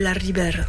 La Ribera.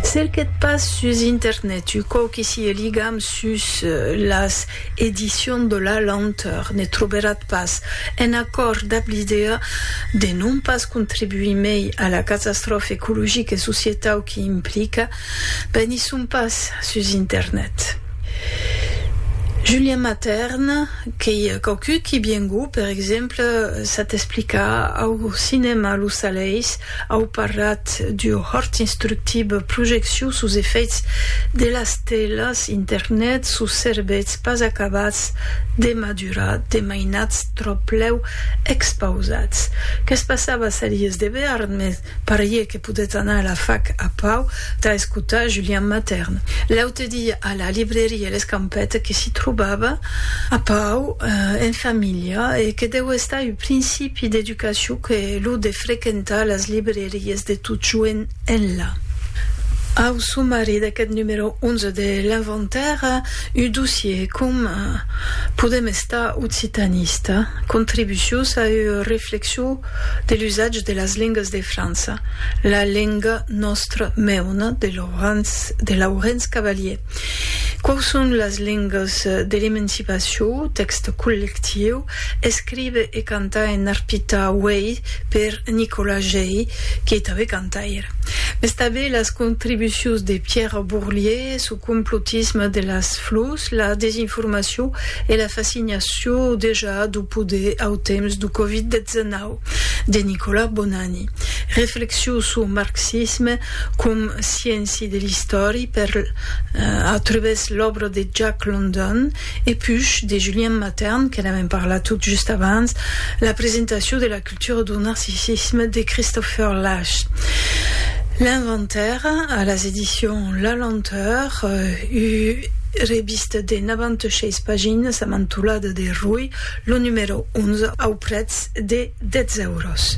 Cerquèt pas sus internet u quauqui sieu ligam sus las Edicions de la Lenteur, ne troberat pas, en acòrd dab l'idèa de non pas contribuir mei a la catastròfa ecologica e societau qu'i implica, ben i son pas sus internet. Julien Matern, qu'ei quauqui qui bien gou, per exemple, s'at explicar au cinèma Lo Salèis, Au parlat du hòrt instructible Projeccion sus efèits de las telas internet sus cerbèths pas acabats de madurar, de mainats tròplèu expausats. Qu'es passava Salies de Bearn, mes parié que podèt anar a la fac a pau tà escotar Julian Matern. L'aute dia a la libreria L'Escampèta que s'i trobava a pau en familha e que deu estar uu principi de Qu'aciu qu'è lo de frequentar las libreries de totjoent enlà. Au somari d'aqueth numero 11 de L'Inventaire, un dossier com Podem estar occitanista, contribucions a ua reflexion de l'usatge de las lengas de França, La lenga nòstra meona de Laurens Cavalier, Quau son las lengas de l'emancipacion, tèxte collectiu, Escrive e canta en arpita uèi per Nicolas Gey, que tanben cantaire. Mès tanben las contribucions de Pierre Bourlier suu complotisme de las flors, la desinformacion e la fascinacion dejà duu poder au temps duu Covid 19, de Nicolas Bonanni. Reflexions suu marxisme com scienci de l'istòri per a trubes l'òbra de Jack London, E pus, de Julien Matern, que n'avèm parlat tot just abans, la presentacion de La culture du narcissisme de Christopher Lasch, l'inventaire, a las edicions La Lenteur, u revista de 96 paginas amb antolada de Rui, lo numèro 11, au prètz de 10 euros.